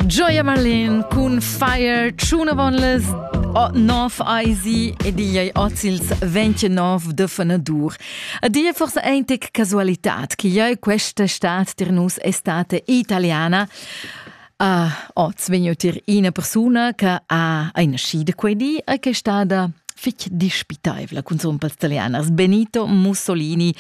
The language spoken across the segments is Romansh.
Gioia Marlin cun Fire Tschunavonles o 9 Eisi ed igl ei oz ils 29 de Fenadur. A dir forse eintic casualitad che jeu questa stad tir nus estate italiana. Uh, oz vegn tir ina persuna che ha ei nascida quei di e che è stada fich dispitaivla cun sompals italianas. Benito Mussolini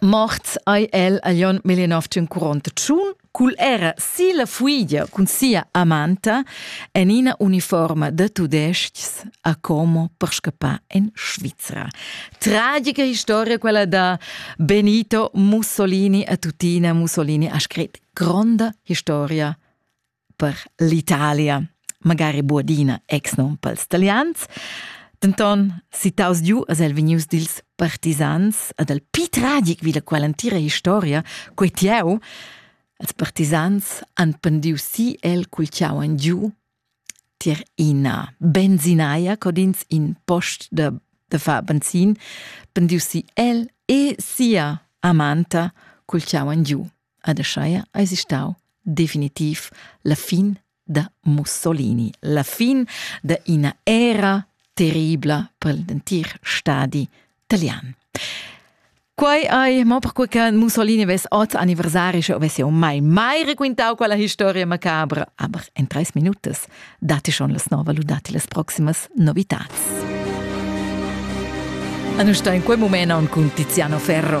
Mort ei el a Jon Milinov tun curont tschun cul era si la fuidia cun sia amanta en ina uniforma da tudestgs a Como per scappar en Svizra. Tragica historia quella da Benito Mussolini a tutina Mussolini ha scrit gronda historia per l'Italia, magari buadina exnom pels talians. Denton, citaus giu as el vegnius dils partisans ad el pi tragic vi la qual entira historia, quei tieu, els partisans han pendiu si el cul ciau en giu tier ina benzinaia codins in post da, da fa benzin, pendiu si el e sia amanta cul ciau en giu. Ad Aschaia eisi stau definitiv la fin da Mussolini, la fin da ina era terribla per l'entir stadi italian. Quei ei, mo perquei che Mussolini vess oz anniversari, sche vess jau mai mai requintau quella historia macabra. Aber en treis minutas dati schon las nova lu dati las proximas novitats. Anusta in quei moment aunc cun Tiziano Ferro.